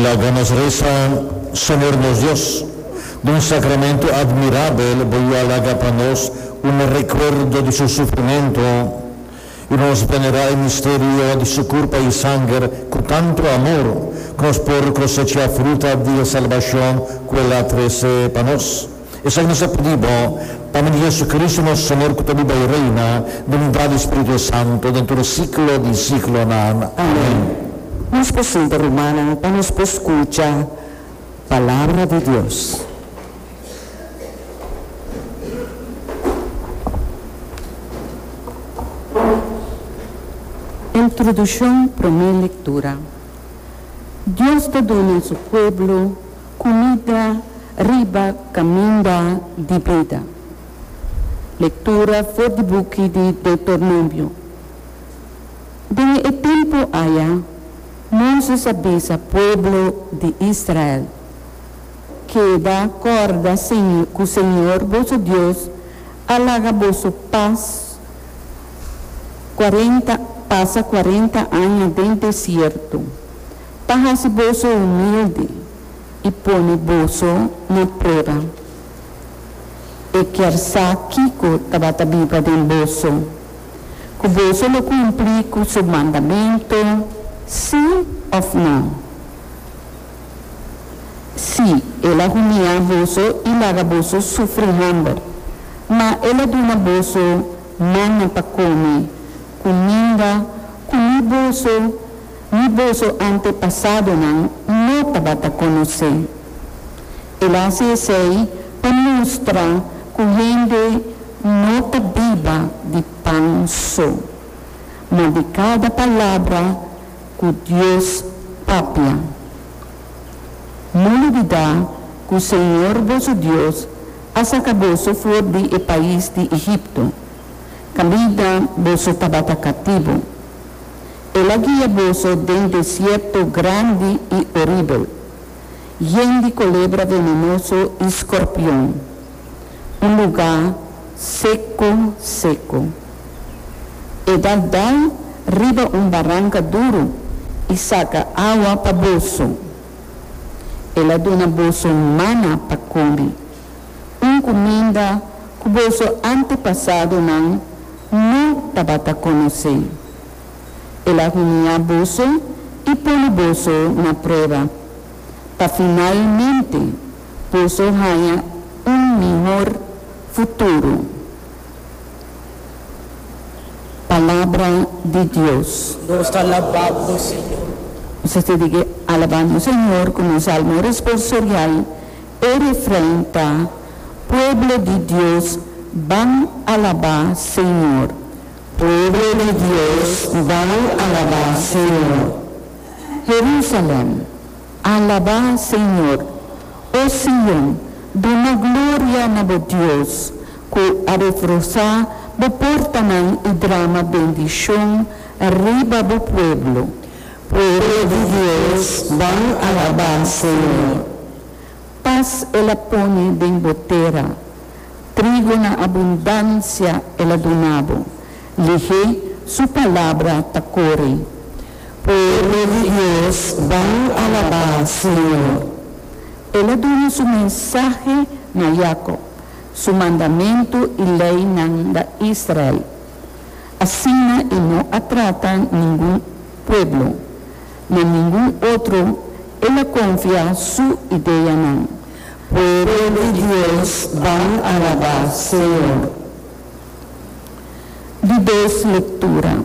Laga nos resa, Señor nos Dios, d'un sacramento admirabel bo yu a laga pa nos un recuerdo di su sufrimento, y nos venera e misterio di su curpa y sanger cu tanto amor, cu nos por cosecha fruta di e salbacion cu el a trece pa nos. Esei nos a pidi bo, pa medio di JesuCristo nos Señor cu ta biba y reina, na unidad di Espiritu e Santo, den tur siglo di siglonan. Amen. Nos por sienta, rumannan, pa nos por scucha Palabra di Dios. Introduccion, Prome lectura. Dios ta duna Su pueblo. Kumida riba kaminda di bida. Lektura for di buki di Deuternomio. Den e tempu aya, Moses a bisa pueblo di Israel, Keda kòrda ku Señor boso Dios a laga boso pas pasa kuarenta aña den desierto. Pa hasi boso humildi i pone boso na prueba, e kier sa kiko tabata biba den boso, ku boso lo kumpli ku su mandamentu, sí òf nò. Sí, el a humia boso i laga boso sufri hòmber, ma el a duna boso mannan pa kome kuminda ku ni boso Mi boso antepasadonan no tabata conoce. El a haci esey pa mustra cu hende no ta biba di pan so, ma di cada palabra cu Dios papia. No lubida cu Señor boso Dios a saca boso for di e pais di Egipto, cabida boso tabata cativo. El a guia boso den desierto grandi i oribel, yen di colebra venenoso i scorpion, un lugá seco seco. E dal dal riba un baranca duro i saca awa pa boso. El a duna boso mana pa comi. un cuminda cu boso antepasadonan no tabata conoce. El a humia boso y pone boso na prueba, pa finalmente boso haya un mihor futuro. Palabra di Dios. Nos ta alaba Bo, Señor. Nos a ser di ke alaba nos Señor ku nos salmo responsorial. E refrein ta, Pueblo di Dios, ban alabá Señor. Pueblo di Dios, ban alabá Señor. Jerusalem, alabá Señor. O Sion, duna gloria na bo Dios, cu a refrosá bo portanan i drama bendicion riba bo pueblo. Pueblo di Dios ban alabá Señor. Pas el a pone den bo tera, trigo na abundancia el a dunabo, lihe su palabra ta kore. Pueblo di Dios ban alabá Señor. El a duna su mensahe na Jacob, su mandamentu i leynan na Israel. Asina e no a trata ningun pueblo, na ningun otro el a konfia su ideanan. Pueblo di Dios ban alabá Señor. Di dos lektura.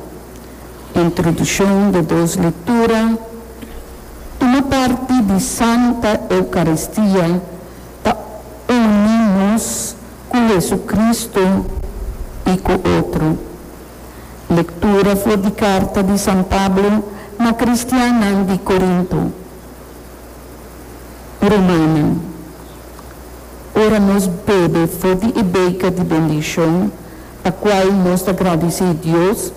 Introdushon de dos lektura Tuma parti di Santa Eukaristia ta uni nos. Ku Hesucristo i ku otro. Lektura for di karta di San Pablo na kristiannan di Korinto. Rumannan, ora nos bebe for di e beka di bendishon pa kual nos ta gradisí Dios,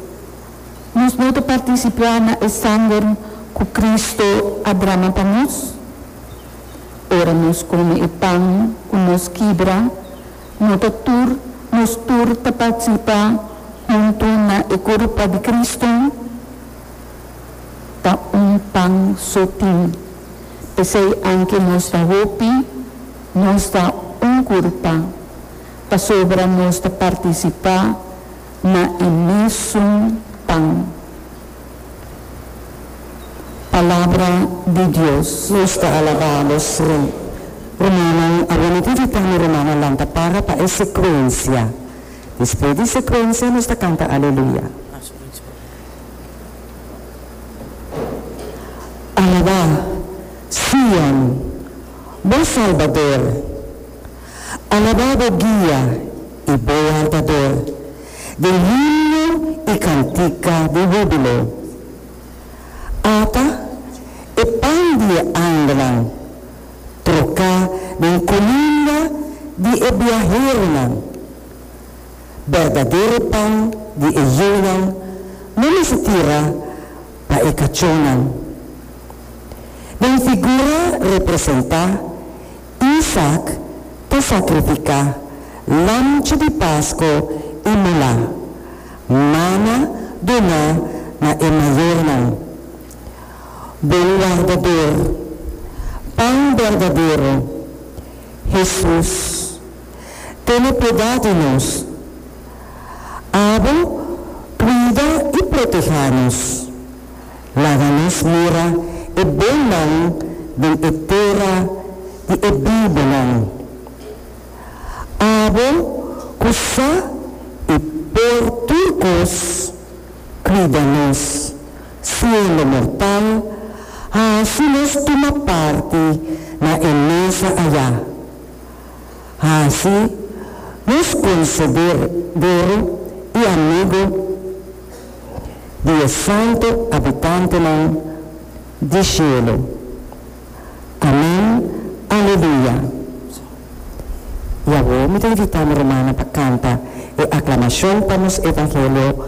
nos no ta partisipá na e sanger ku Cristo a drama pa nos? Ora nos kome e pan ku nos kibra, no ta tur nos tur ta partisipa huntu na e kurpa di Kristu? Ta un pan so tin. P'esei anke nos ta hopi, nos ta un kurpa, pasobra nos ta partisipá na e mesun pan. Palabra di Dios. Nos ta alabá nos Rey. Rumannan, awor mi ta invitá mi rumannan lanta para pa e sekuensia. Despues di sekuensia nos ta kanta Aleluya. Alabá, Sion, bo Salbador! Alabá bo guia i bo wantador den himno i kantika di húbilo. Ata e pan di e angelnan troká den kuminda di e biaheronan. Berdadero pan di e yunan no mester tira pa e kachónan. Den figura representá Isak ta sakrifiká lamchi di pasko i molá mana doná na e mayornan. Bon Wardador, Pan berdadero, Hesus, tene piedá di nos. Abo kuida i protehá nos. Laga nos mira e bonan den e tera di e bibonan. Abo ku sa i por tur kos, kuida nos, siendo mortal, hasi nos tuma parti na e mesa ayá. Hasi nos konsederu i amigu. di e santu abitantenan di shelu. Amen, Aleluya! I awor mi ta invitá mi rumannan pa kanta e aklamashon pa nos evangelio.